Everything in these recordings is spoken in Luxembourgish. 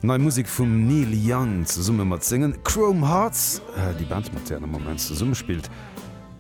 Nei Musek vum Neil Young zesumme mat sengen Chrome Hearts, déi Band mat där en am Moment zesumme spillt.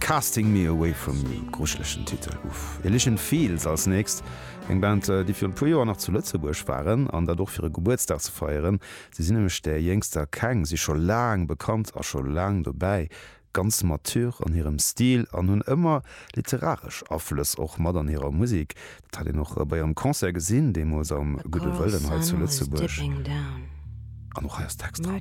Casting Me Away From You, grujelechen Titel. Uff. Elysian Fields als nächst, eng Band, déi virun e puer Joer nach zu Lëtzebuerg waren, an dat och fir e Gebuertsdag ze feieren. Si sinn nämlech där Jéngster keng, si scho laang bekannt a scho laang dobäi. ganz mature an hirem Stil an hunn ëmmer literaresch Aflëss och mat an hirer Musik. Dat hat een och bei hirem Concert gesinn, deemools am Gudde Wëllen hei zu Lëtzebuerg. An och hei ass Text dran.